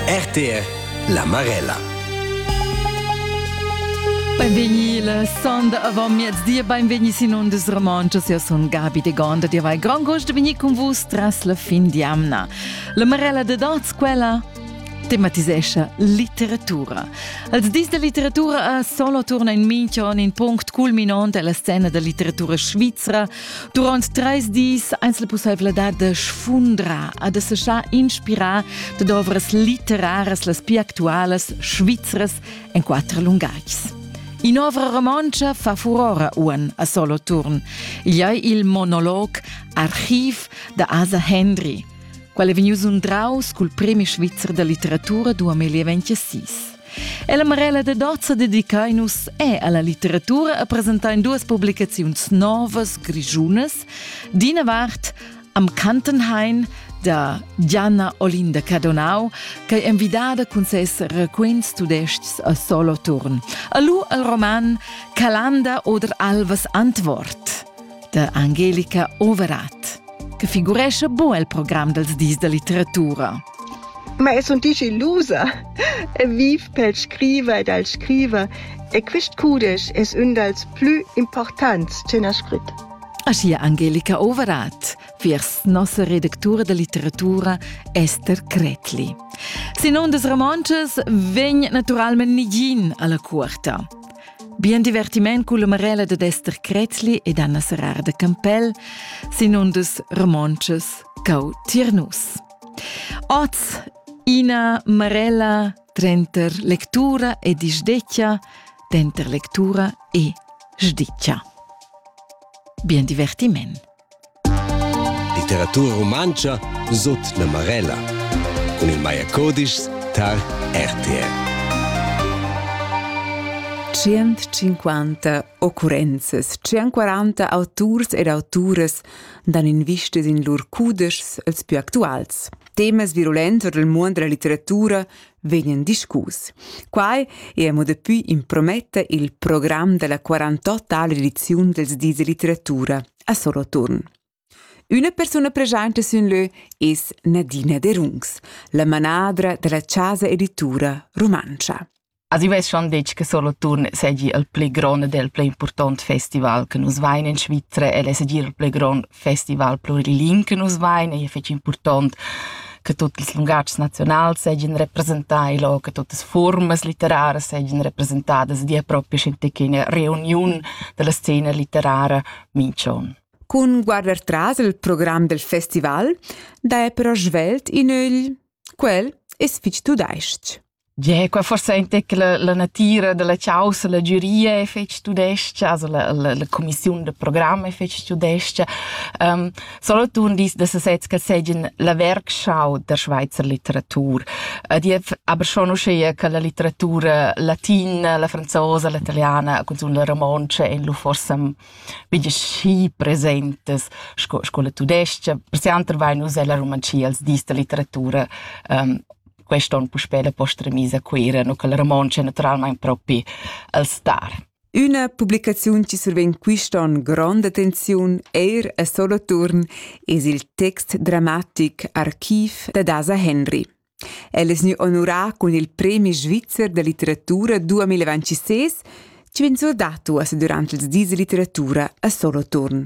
RTL la Marella. Benveni la sonda avant mezdi, benveni sin ondes romanchas, io son Gabi de Gonda, dir vai grand gost de venir con vus tras la fin di amna. La Marella de Danz, quella tematisescha litteratura. Als dis de litteratura a solo turna in minchon in punct culminant alla scena da litteratura svizra Durant treis dis eis la pusseivladad de sfundrar a de seschar inspirar de ovras literaras las più actualas svizras en quattro lungais. In'ovra romontscha fa furora uan a solo turn. Igl ei il monolog Archiv da Asa Hendry, qual è vegnius undraus cul premi svizzer da litteratura 2026. E la Marella de Dozza dedicain nus è alla litteratura a presentain duas publicaziuns novas grigiunas. D'ina vart am Kantenhain da Gianna Olinda Cadonau, che è invidada cun ses raquints tudescs a Soloturn. Alu al roman Calanda oder Alvas Antwort. da Angelica Overath, che figurescha bu el program dels dis da litteratura. Ma es un dici lusa e viv pel scriver ed al scriver e quist cudesch es ün dals plü importants che n'ha scrit. Aschia Angelica Overath, viers nossa redactura da litteratura Esther Kretli. Sin ondas romontschas vegn naturalment nigin alla cuorta. Bien divertiment culla Marella dad Ester Krätzli ed Anna Serrar de Campell sin un dus romontschas cau tiernus. Oz ina Marella trenter lectura e disdeccia, denter lectura e sdiccia. Bien divertiment! Litteratura rumantscha sut la Marella cun il Maya Codischs tar RTL. 150 occurrenzas, 140 auturs ed auturas dan invistas in lur cudeschs els più actuals. Temas virulents del muond della litteratura vegnan discus. Quai è mo dapi imprometta il program della 48 ediziun dels dis de litteratura a Soloturn. Una persona presente sin leu es Nadina De Rungs, la manadra della Casa Editura Romancia. Arriveschan detg che Soloturn seigi il pli grond del pli important festival che nus vain in Svizzera e seigi il pli grond festival pluriling che nus vein ei fetg impurtont che tutti ils lungatgs nazionals seigien representai lo, che tutte formas litteraras seigien representadas via propria scientechina reuniun della scena litterara mincion. Cun guarder tras il program del festival, da è però svelt in ögl. Quel es fich tudais-ch. Gie, quei forsa entec la, la natira dalla caussa, la giuria e fetg tudescha, also la, la, la commissiun de programm e fetg tudescha. Um, Solothurn dis da sesez che segin la werkschau der Schweizer Literatur. Ed io aber schon uschia che la litteratura latina, la franzosa, la italiana, cunzun la romontsch ein lu forsa bigli schi presentes sco, sco la tudescha. Per se anter vai nus ella romancia als dis da litteratura um, quest on puspè la posta remis a Cuira, no che il romontsch è naturalmente propi al star. Üna publicaziun chi survegn quist'on grond attenziun eir a solo turn es il text dramatic Archiv da Dasa Henry. El es gnü onurà cun il Premi svizzer da litteratura 2026 chi vegn surdato as durant ils dis literatura a solo turn.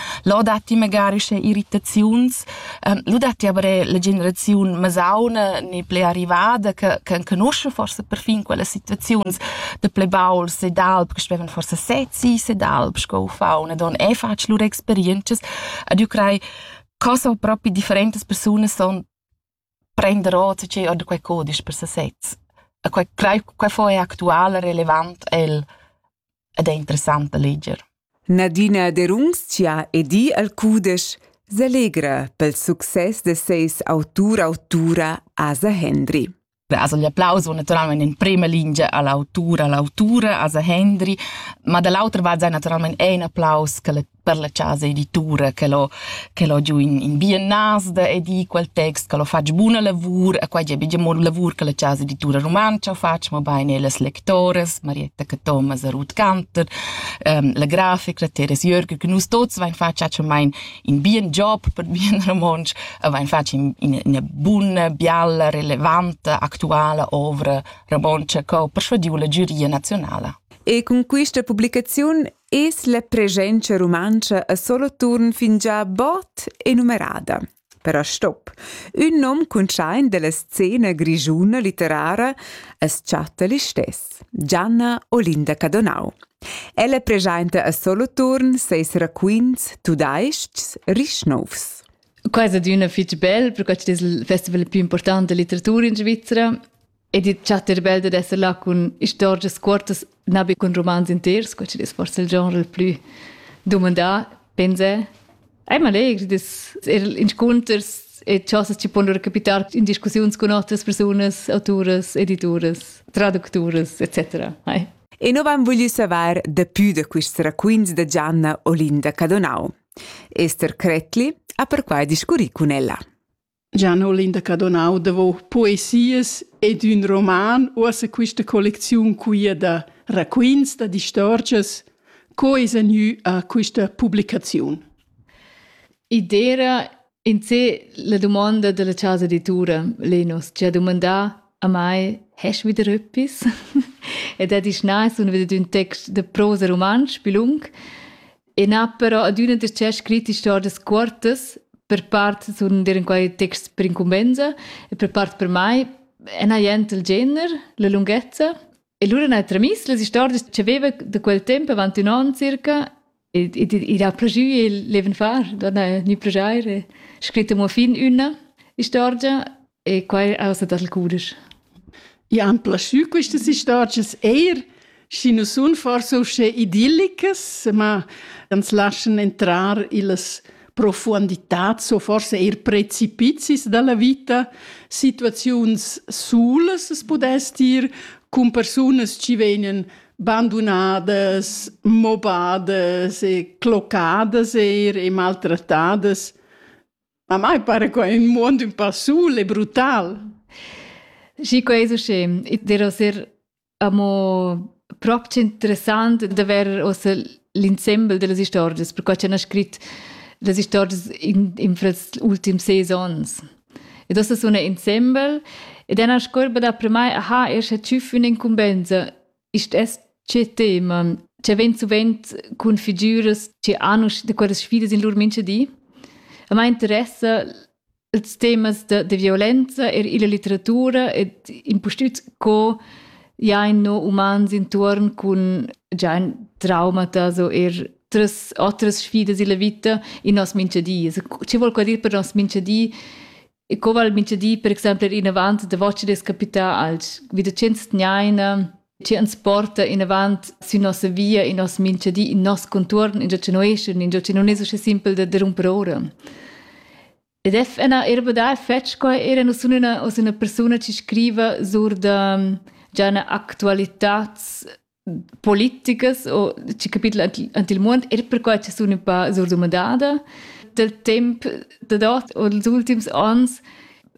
Lo datti magari sche irritaziuns, ehm, lu datti aber er la generaziun masauna ni pli arrivada che che enconusce forse perfin quelle situaziuns da plei bauls ed alp che spevan forse sezzi ed alp sco ufauna don e fatg lur experientschas ed io crei co so propi differentas persunas son prender ota tgei ord quei cudisch per sesez. E quei crei quei fo ei actual e relevant el ed è interessant da leger. Nadina Derunzia edi al cudisch s'allegra pel success de seis autur autura Asa Hendry. Also gli applausi sono naturalmente in prima linea all'autura, all'autura, Asa Hendry, ma dall'altra va naturalmente è un applaus che le per la chasa editura che l'ho che l'ho giù in in biennasda e di quel text che l'ho fatg buna lavur e quai è bigia mo lavur che la chasa editura rumantscha fatg mo bain las lectoras Marietta Cathomas e Ruth Cantor ähm, la grafica Teres Jörg che nus tots vain fatg mein in bien job per bien romontsch e vain fatg in una buna bialla relevante actuale ovra romontsch che ho persuadiu la giuria nazionale E cun questa publicaziun es la presenza rumantscha a Soloturn fingià bod enumerada. Però stop. Ün nom cuntschaint della scena grischuna litterara as chatta listess, Gianna Olinda Cadonau. Ella presenta a Soloturn seis raquints tudais-chs rich nouvs. Quai è adina fitg bel, perché es il festival più importante della litteratura in Svizzera Ed il chattar bel dad esser là cun istorgias cuortas, na be cun romans inters, quel chi'd es forse il genre il plü dumandà, pensè. Ei m'allegr das er inscunters e chosas chi pon lura capitar in discussiuns cun otras persunas, autoras, edituras, traducturas, etc. Ei. E nu van voglü savair dapü da quists raquints da Gianna Olinda Cadonau. Esther Cretli ha perquai discurrì cun ella. Gian Olinda Cadonau davò poesias ed ün roman, uossa quista collecziun quia da raquints, da distorgias, co esa gnü a quista publicaziun. I d'eira in sé la dumonda da la chasa editura Lenus, chi ha dumandà a mai «Hast wieder etwas?» ed ha disch «Nein, sun wieder ün text da prosa rumantsch, bilung». E n'ha però adüna darcheu scrit istorgias cuortas, per part sun dir in quai texts per incumbenza e per part per mai n'ha jent il gener, la lunghezza. E lura n'ha tramiss las istorgias che veva da quel tempo avanti un anno circa e, e, e ha progì il leven far, da gnü progiaire, scrit amo fin üna istorgia E quai ausa dal cudisch. I han plaschü questas istorgias eir schi nu sun forsa uschè idillicas, ma ans laschan entrar illas profuonditats o forse eir precipizis da la vita, situaziuns sulas as pudess dir, cun persunas chi vegnan bandunadas, mobadas e clocadas eir e maltrattadas. A mai pare quai in muond ün pa sul e brutal. Schi quai es usché. I dera ser amo prop interessant d'avair ossa l'insembel da las istorgias, perquai ch'el ha scrit las istorgias in, in frals ultims seis ons. Ed ossa suna insembel ed ena scorba da per mai aha, escha tschüf üna incumbenza ist es che teman che vent suvent cun figüras che hanno de quelle sfide in lur minche di a me interessa els temas de, de violenza er illa litteratura ed impustüt co ja in no umans intorn cun già ein traumata so er tres otras sfidas illa vita in nos minche di. Also, che vuol dir per nos minche di E co val mintgadi per exempel ir avant davos ci des capitals? Vi da tschents tgnaina che ans porta inavant sün nossa via, in nos mintgadi, in nos contuorn, ingio che nueschun, ingio che non es usche simpel da da rumper ora. Ed è una erba da fetch qua era non sun una, una persona che scriva sur da già una actualitats politicas o chi capitla ant il muond er perquai cha sun ün pa surdumandada dal temp da dot o dals ultims ans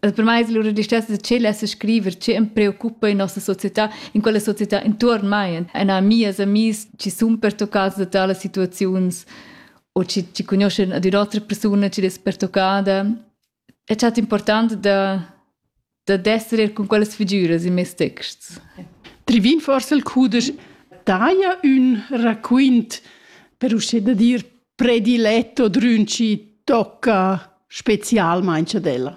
per mai es lura distessa da tschel esser scriver che am preoccupa in nossa società, in quella società intuorn mai, en mias amis chi sun pertoccats da talas situaziuns o chi, chi conoschan ad ün'otra persuna chi'd es pertoccada è stat important da da d'esser er cun quellas figüras in mes texts. Trivin forse il cudesch daja ün raquint per uschè da dir prediletto drün ci tocca specialmain ad ella.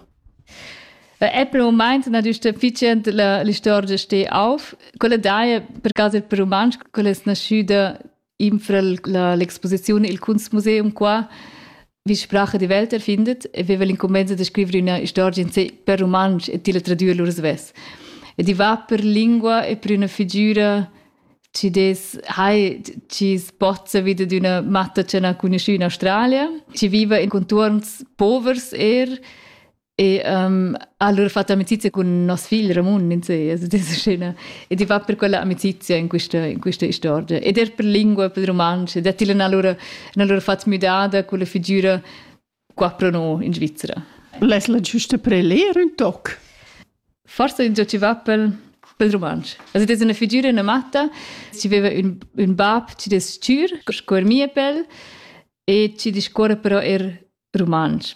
Apple moment na giusta ficient la l'istorgia steh auf, quella daja per caso per rumantsch, quella es naschüda infra l'exposiziun Il Kunstmuseum qua, wie Sprache die Welt erfindet, e veva l'incumbensa da scrivere una storia in sé per romansch e tila tradüre lur svess. E di va per lingua e per una figura ci des hai ci spozza vida d'una matta che n'ha conosciuto in Australia, ci viva in contorns povers er, E um, allora ho fatto amicizia con nos figl Ramun in sé, also diese scena. Ed i va per quella amicizia in questa, in questa storia. Ed er per lingua, per romansch. Ed ella in allora, in allora fatto müdada con la figura qua pro noi in Svizzera. L'es la giusta per leer un toc? Forse in ci va per, per romansch. Also das ist eine Figur, eine Matta. Sie aveva un, un bab, ci des Tür, scuor mie pel, e ci discorre però er romansch.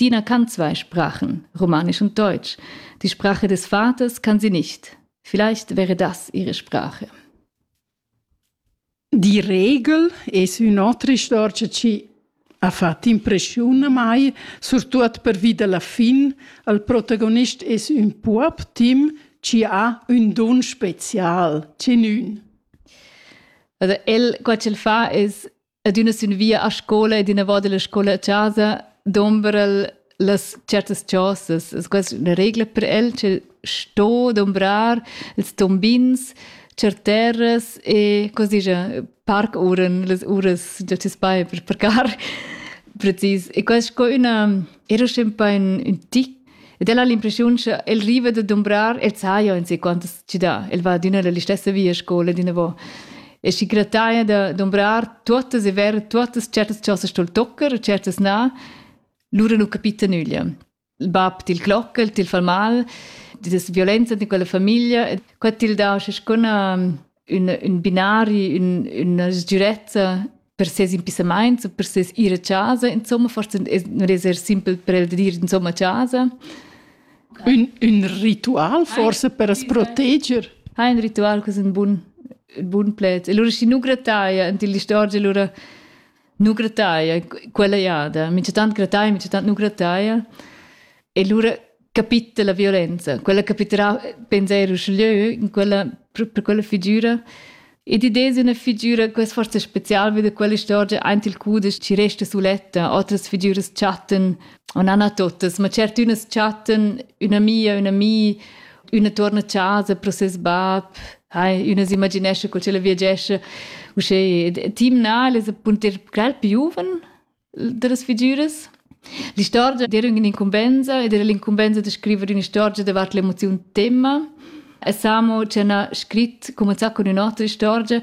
Dina kann zwei Sprachen, Romanisch und Deutsch. Die Sprache des Vaters kann sie nicht. Vielleicht wäre das ihre Sprache. Die Regel e sui nostri storici ci ha fatto impressione mai, soprattutto per via della fin, al protagonist es un pup Tim ci ha un don special, ci nun. Also, el, quel fa es ad üna sün via a scola ed inavant illa scola a chasa dombra'l las certas chosas. Es questa üna regla per el che sto dombrar ils tombins cer terras e cosa dice parkuhren, las uras da ti spai per parcar precis. E questa sco üna era sempre un, un tic Ed el ha l'impressiun che el riva da dumbrar el saja in sei quantas ci dà. El va adüna la stessa via a scola dinavò. E schi grataia da dumbrar tuottas e ver tuottas certas chosas sul tocker e certas na, lura nu capita nüglia. Il bab til clocca, til fa mal, das violenza di quella famiglia, e qua til dà sco una ün, ün binari, ün, üna sgürezza per ses impissamaints per ses ir a casa, insomma, forse non es er simpel per el de dir insomma a casa. Un, un ritual forse per as proteger? Ha un ritual, que es un bun, un bun pled. E allora schi nu grataia ant ill'istorgia, allora nu grataia, quella jada, minchatant grataia, minchatant nu grataia. E lura capita la violenza. Quella capiterà, penser uschlö, in quella, per quella figura. Ed idea è una figura che è forse speciale, weil quella storia ein il cudes ci resta suletta, altre figure chatten, non hanno totes, ma certe unes chatten una mia, una mi, Üna tuorna a casa pro ses bap, hai, üna s'imaginescha co ch'ella viagescha. Uschè timnal es appunter quel più giuven da las figüras. L'istorgia d'era un'incumbenza ed era l'incumbenza da scrivere un'istorgia davart l'emozion tema. E Samo ci ha scritto, cominciato con un'altra storia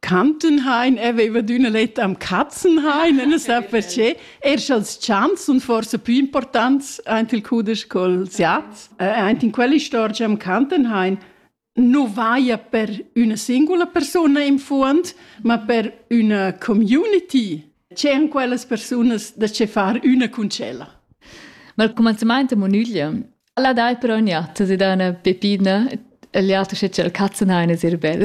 Kantenhain aveva d'üna letta am Katzenhain, e non sa perché. Er sch'als chants sun forse più importants aint il cudesch co'ls jats. Eh, aint in quell'istorgia am Kantenhain nu vaja per üna singula persuna in fuond, ma per üna community. C'èn quellas persunas da che far üna cuncella? Ma al cumanzamaint a Monüglia Alla dai però nia, tu si da üna pepina, e l'altra sche c'è il cazzenhain es ir bel.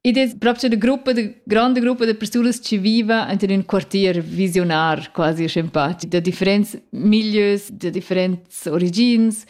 Id es proprio de gruppa, de grande gruppa de persunas ci viva enter ün quartier visionar quasi scempati da differents milieus, da differents origins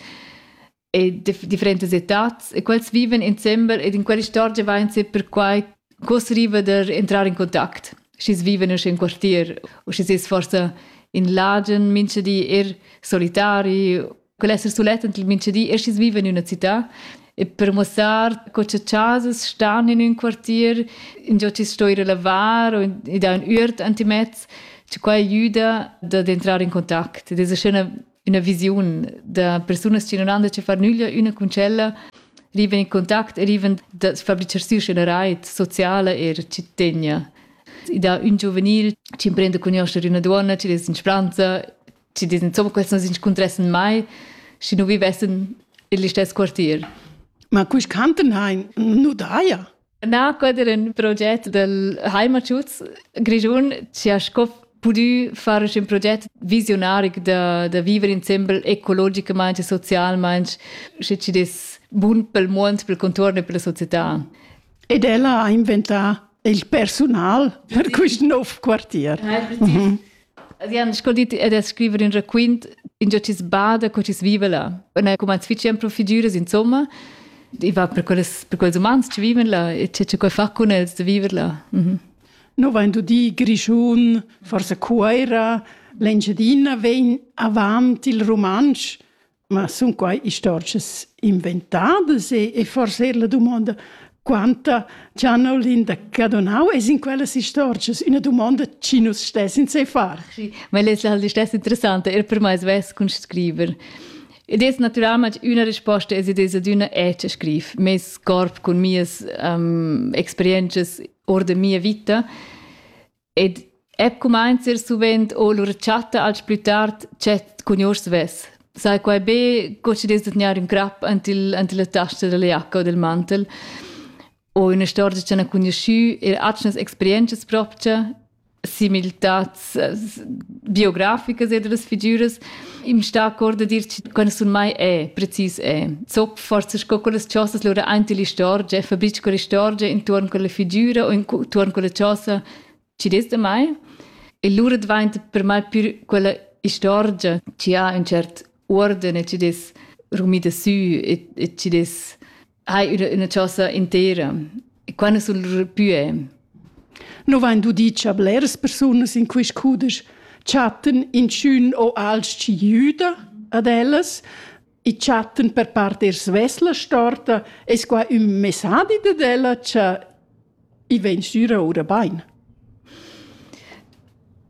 e de differentes etats e quels viven insembel ed in quell'istorgia vain se perquai cos riva der entrar in contact. schi's vivan in quartier u schi's es forsa in lagen mincha di er solitari quel esser sulet ent mincha di e schi's vivan in üna città e per muossar co cha chasas stan in ün quartier ingio chi's sto ir a lavar o i dà ün üert antimez che quai aiüda dad entrar in contact ed es scena üna visiun da persunas che non han da che far nüglia üna cun tschella riven in contact e riven da fabricaziun schena reit sociala e cittadina. I dà un giuvenil che imprende a conoscere una donna, che des in Spranza, che des insomma quels non s'inscontressen mai, si non vivessen in listess quartier. Ma cui canten hein nu daia? Na, quai era in proget del Heimatschutz Grischun che ha sco pudü far ün proget visionaric da, da viver insembel ecologicamaing e socialmaing, sche chi'd es bun pel muond, pel contuorn e pella società. Ed ella ha inventà il persunal per quist nouv quartier. Mhm. Avian scoldit ed es scriver ün raquint ingio chi's bada co chi's viva là. Und ha cumanz fitg empro figüras insomma. I va per quelles, per quels umans che vivono là e che che fa con els de vivere là. Mhm. No vain dudi Grischun, forse Cuoira, l'Engiadina vegn avant il romansch Ma sun quai istorgias inventadas e, e forse er la dumonda quanta Gianolin da Cadonau es in quellas istorgias? Üna dumonda chi nus stessin sai far. Ma ella es halt stess interessanta, er per mai svess cun scriver. Ed es naturalmente una risposta es ed es ad una echa scriv. Mes corp cun mias um, experiences ord de mia vita Ed eb cumainza ir suvent o lur chatta als plü tard dschet cun gnur svess. Sai quai be co chi dess da tgnair ün crap ant il, ant la tasta da la giacca o dal mantel. O üna storia ch'han cugnuschü eir atgnas experientschas propcha, similtats biograficas e da las figüras. Im sta accord a dir quando sun mai è, precis è. Zop forse sco con las chosas lura anti l'istorgia, fa bitch con l'istorgia intorno con la figura o intorno con la chosa ci des da mai. E lura diventa per mai più quella istorgia ci ha un cert ordine, ci des rumida sü e, e ci des hai üna, üna chosa intera. E quando sul pue? No vain dudi cha bleras persunas in quist cudesch chattan inchün o alch chi jüda ad ellas e chattan per part er svesla storta, es qua ün messadi dad ella cha I vegn sura ora bain.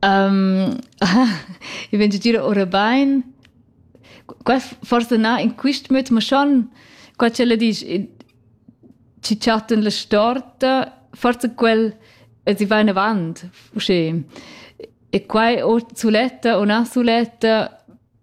Um, I vegn gira ora bain. Qua forse na in quist möt, ma schon qua c'ella disch ci chattan la storta, forse quel si va in avant, usche. E qua o suletta o na suletta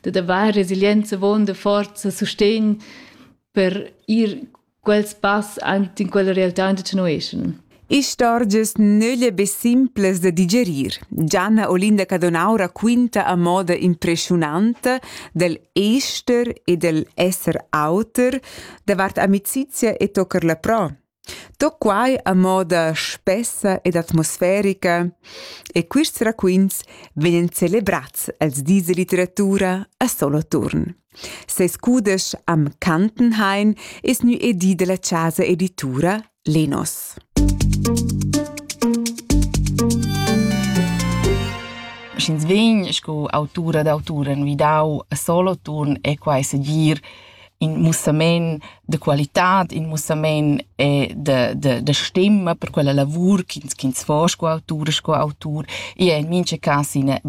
dad avair resilienza avon da forza sustegn per ir quels pass ant in quella realtà da tenoeschen. Istorgias nölle be simples da digerir. Gianna Olinda Cadonaura quinta a moda impressionanta del ester e del esser auter davart amicizia e tocker la pro. Tut quai a moda spessa ed atmosferica e quists raquints vegnan celebrats els dis da litteratura a Soloturn. Seis cudesch am Kantenhain es gnü edì da la chasa editura Lenos. Sch'ins vegn sco autura d'autura envidau a Soloturn è quai segir in mussamaint da qualitad, in mussamaint e da, da, da stima per quella lavur ch'ins ch'ins fa sco autur e sco autur. I è in mincha cas ina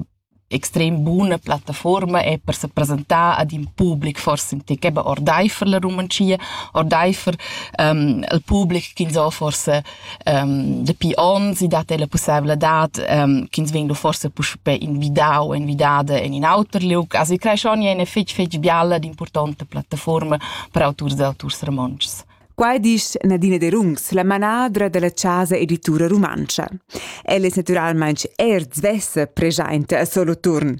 extrem buna plattaforma è per se presentar ad in public forse in tec eben ordeifer la Rumantschia, ordeifer um, il public ch'ins ha forse um, dapi ons i dat la pussevladad um, ch'ins vegn forse puspè invidau invidada en in auter liug. Also i creesce ogni eine fetg fetg bialla ed importante plattaforma per auturs e auturs romontschs. Qua dice Nadine De Rungs, la manadra della Casa Editura Rumancia. Ella è naturalmente er svessa presente a Soloturn.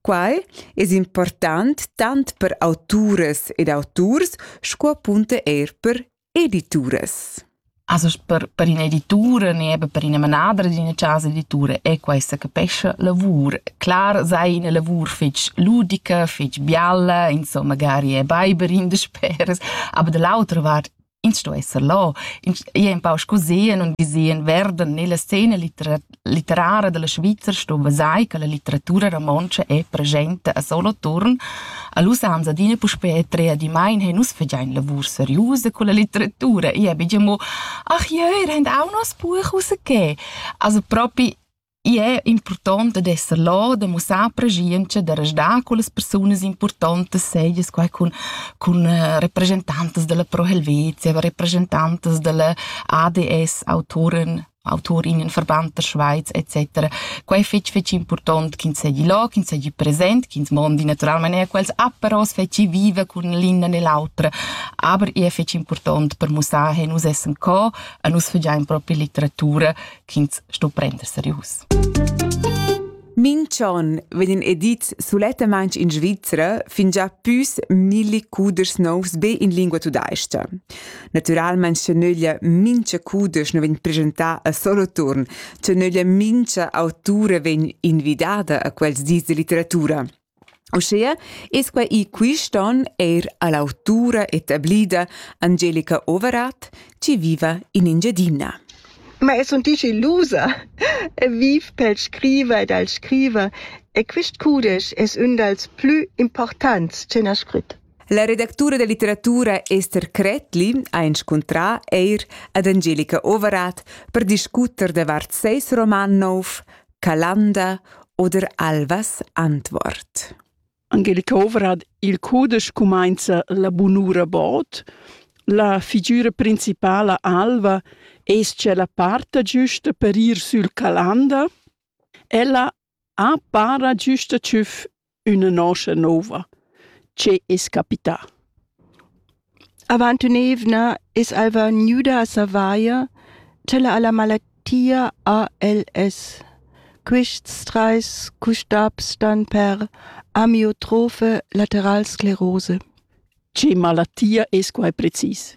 Quai es important tant per autores ed autors sco appunto er per Edituras. Also per, per ina editura ne eben per ina manadra d'ina casa editura è questa capescha lavur. Clar sei ina lavur fetg ludica, fetg bialla, insomma magari è beiber in de speres, aber dell'altra vart ins sto esser là, ins è un pau sco sehen und gesehen werden nella scena litera- litterara della Svizra sto vesai che la litteratura romontscha è presente a solo turn, a lus ams adina puspè trea di mai he nus fegiain lavur seriusa con la litteratura e abbiamo ach jeu rend auch nos buch us che also propi i è importante d'esser là, de mussar prescienza, de resdar con le persone importanti, sei es qua con, con eh, rappresentantes della Pro Helvetia, rappresentantes della ADS, autoren auturin, verband der Schweiz etc. Quei è fetg fetg important ch'ins seigi là, ch'ins seigi present, ch'ins mondi naturalmente er quels aperos fetgi vive cun l'inna nell'autra. Aber è fetg important per mussar che nus essen co e nus fagiam proprio litteratura ch'ins sto prender serius. Minch'on vegn edit sulettamaing in Svizzera fingià püs milli cudeschs nouvs be in lingua tudais-cha. Natüralmaing cha nöglia mincha cudesch nu vegn presentà a solo turn, cha nöglia mincha autura vegn invidada a quels dis da litteratura. Uschea es quai i quist on eir a l'autura etablida Angelica Overath chi viva in Engiadina. Ma es sun digilusa e viv pel scriver ed al scriver e quist cudesch es ün dals plü importants ch'he na scrit. La redactura da litteratura Ester Kretli ha inscuntrà eir ad Angelica Overath per discuter davart seis roman nouv Calanda oder Alvas Antwort. Angelika Overad, il cudesch cumainza la bunura bod. La figura principala Alva es-cha la parta giusta per ir sül Calanda. Ella ha para giusta tschüf üna noscha nouva. Che es capità? Avant ün'eivna es alva gnüda a savair ch'ella ha la malattia ALS. Quists trais custabs stan per amiotrofe lateral sclerose. Che malattia es quai precis?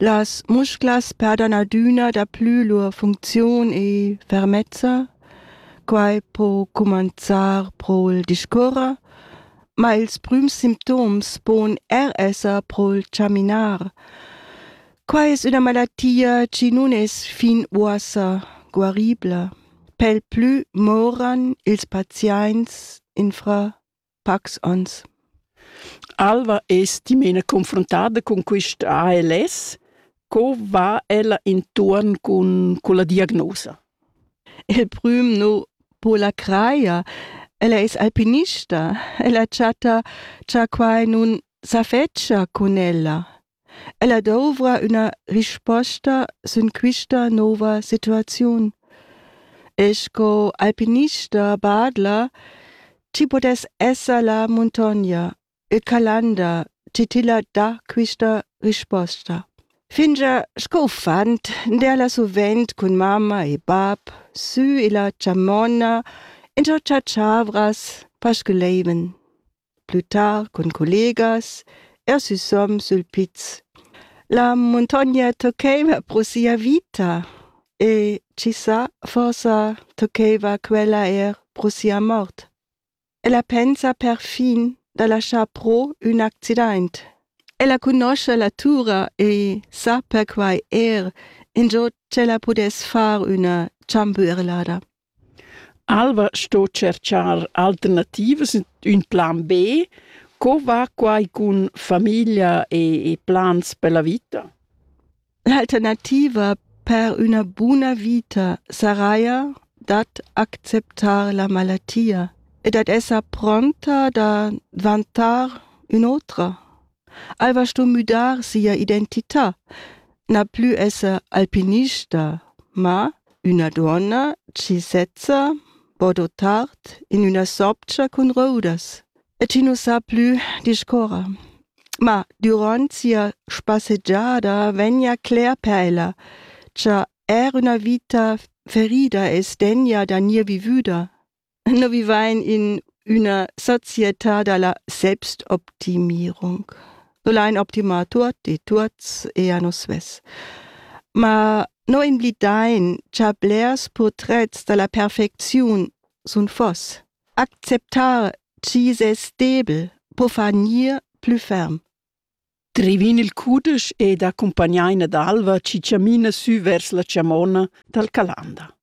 Las musclas perdan adüna daplü lur funcziun e fermezza. Quai po cumanzar pro'l discuorrer, ma ils prüms simptoms pon er esser pro'l chaminar. Quai es üna malattia chi nun es fin uossa guaribla. Pel plü moran ils paziaints infra pacs ons. Alva es dimena confrontada cun quist ALS. Co va ella intuorn cun culla diagnosa? Il prüm nu po la crajer. Ella es alpinista. Ella chatta cha quai nun s'affedscha cun ella. Ella dovra üna risposta sün quista nouva situaziun. E sco alpinista badla chi pudess esser la muntogna, il Calanda chi tilla dà quista risposta. Fingià sco uffant derla suvent cun mamma e bap sü illa chamonna in cho chatschavras pasculeiven. plü tard cun collegas er süsom sül piz. La muntogna toccaiva pro sia vita e chi sa, forsa toccaiva quella eir pro sia mort. Ella pensa perfin da laschar pro ün accidaint. Ella cunoscha la tura e sa perquai eir ingio ch'ella pudess far üna chamberlada. Alva sto tscherchar alternativas ün plan B. Co va quai cun famiglia e e plans per la vita? L'alternativa per üna buna vita saraja dad acceptar la malatia e dad esser pronta da dvantar ün'otra. Ei va sto müdar sia identità, na plü esser alpinista, ma üna duonna chi sezza po dotar in üna sobgia cun roudas e chi nu sa plü discuorrer. Ma durant sia spassegiada vegna cler per ella cha er üna vita ferida es degna da gnir vivüda. Noi vivain in üna società da la Selbstoptimierung. So l'hain optimà tuot e tuots e a nos svess. Ma noi imblidain cha blers purtrets da la perfecziun sun fos. Acceptar chi es debel po far gnir plü ferm. Drivin il cudesch ed accumpagnain ad alva chi chamina sü vers la chamona dal Calanda.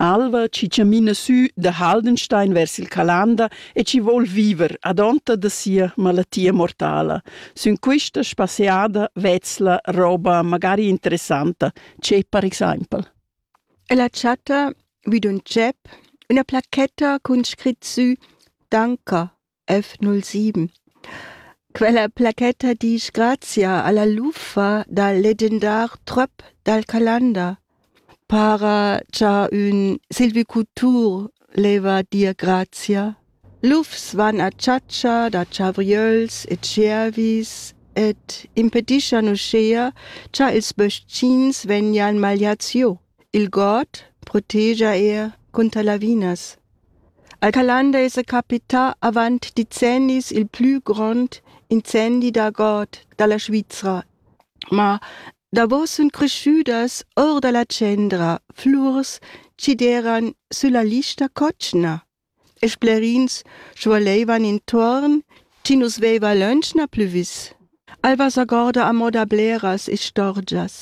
Alva chi chamina sü da Haldenstein vers il Calanda e chi voul viver adonta da sia malattia mortala. Sün quista spasseada vezla roba magari interessanta, che per exaimpel. Ella chatta vi d'ün tschep üna placchetta cun scrit sü Danker F07. Quella placetta disch grazia alla luffa dal legendar tröp dal Calanda. Para cha ün silvicultur leva dir grazia. Lufs van a chatscha da chavriöls e tschiervis ed impediscian uschea cha ils bös-chins vegnan magliats giò. Il god protegia er cunter lavinas. Al Calanda esa capità avant decennis il plü grond incendi da god da la Svizra. Ma davo sun creschüdas our da la tschendra flurs chi deran sülla lista cotschna. e sclerins schualeivan intuorn chi nu's veiva lönch na plü vis. Alva s'agorda amo da bleras istorgias.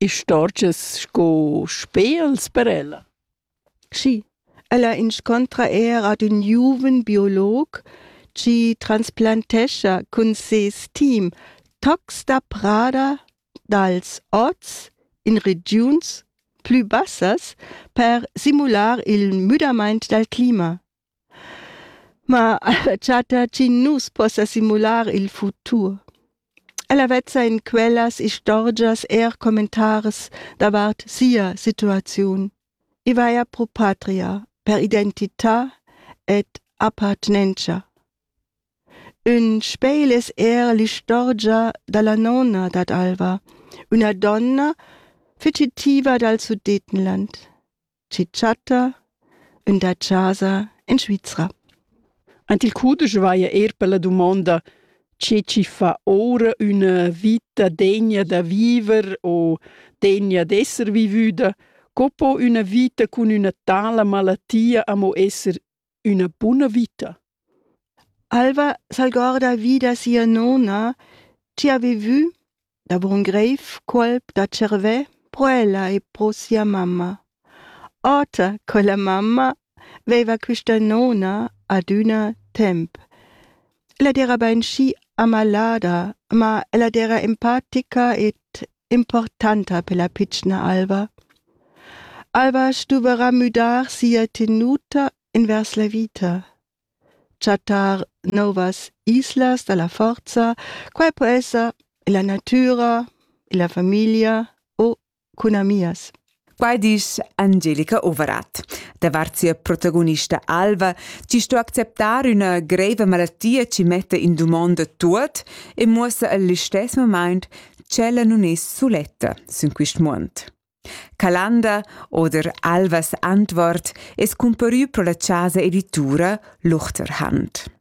Istorgias sco spels per ella? Schi, ella inscontra eir ad ün giuven biolog chi transplantescha cun seis team tocs da prada dals ots in regiuns plü bassas per simular il müdamaint dal clima. Ma chatta chi nu's possa simular il futur. Ella vezza in quellas istorgias eir commentaris davart sia situaziun. I vaja pro patria, per identità ed appartenentscha. Ün spegl es eir l'istorgia da la nona dad Alva, üna donna fugitiva dal Sudetenland chi chatta ün da chasa in Svizra. Ant il cudesch vaja eir per la dumonda che chi fa oura üna vita degna da viver o degna d'esser vivüda, co po üna vita cun üna tala malatia amo esser üna buna vita. Alva s'algorda vi da sia nona chi ha vivü da buon greif colp da tschervè pro ella e pro sia mamma. Ota, quella mamma veiva quista nona adüna temp. Ella d'era bain schi amalada, ma ella d'era empatica ed importanta per la pitschna Alva. Alva stuverà müdar sia tenuta invers la vita. Chattar novas islas dalla forza, quai po esser illa natüra, illa familia o cun amias. Quai disch Angelica Overath. Davart sia protagonista Alva ci sto acceptar üna greiva malattia ci metta in dumonda tuot e muossa al listess moment ch'ella nun es suletta sün quist muond. Calanda oder Alvas antwort es comparü pro la chasa editura Luchterhand.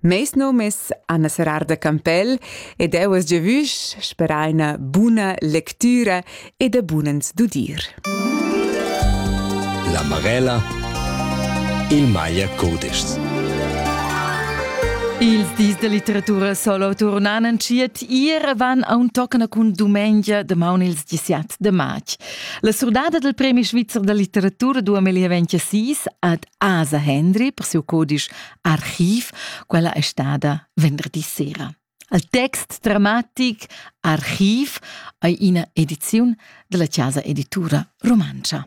Meis nom es Anna Serrar da Campell ed eu es giavüsch sperà üna buna lectüra e da bunens dudir. La Marella il Maier Codischs. Ils dis da litteratura solo turnan en ciet ier van a un toccana cun dumengia damaun ils 17 de march. La surdada del Premi Svizzer da litteratura 2026 ad Asa Hendry per siu codisch Archiv, quella è stada venderdi sera. Al text dramatic Archiv ei ina ediziun della Casa Editura Romancha.